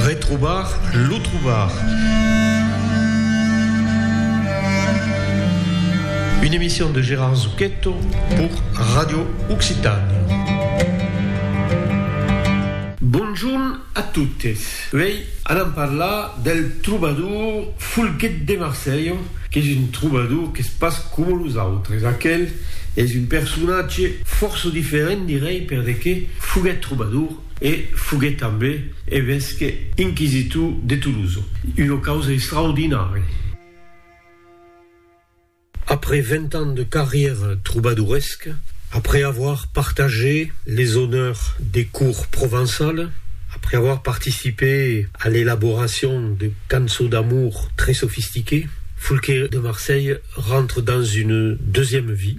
Retrobar lo trobar. Une emission de Gérard Zucchetto pour Radio Occitània. Bonjorn a totes. Uèi anam parlar del trobador Folguet de Marselha, qu'es un trobador qu'es pas coma los autres. Aquel es un personatge fòrça diferent, dirèi, per de qué foguèt trobador. e foguèt tanben evesque inquisitor de Tolosa, una causa extraordinària. Après vint ans de carrièra trobadoresca, après avoir partagé les honneurs des cours provençales, après avoir participé à l'élaboration de cançons d'amour très sophistiquées, Foulqué de Marseille rentre dans une deuxième vie.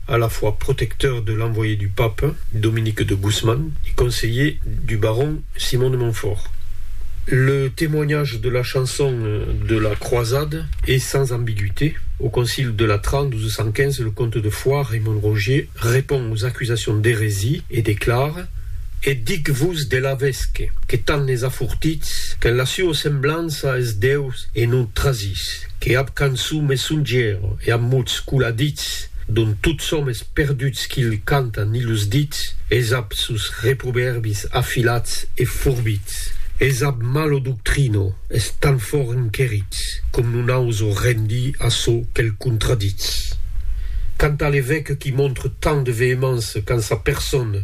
a la fois protecteur de l'envoyé du pape, Dominique de Gusman, et conseiller du baron Simon de Montfort. Le témoignage de la chanson de la croisade est sans ambiguïté, au concile de Latran 1215, le comte de Foix, Raymond Rogier, répond aux accusations d'hérésie et déclare E dic-vos de l'avesque, que tant les a fortits, qu'en la sua semblança es Deus e non trasits, que ab cançon me songièro e ab mots coladits, Dont tots som es perduts qu'il canta ni los dits, Esap sus reprovèrbis afilats e forbits, Esap malo doctrino, es tan fòrt enquerits, com non auso rendir a çò que'l contraditz. Canta l'evèque qui montre tant de vehemença quand sa persona,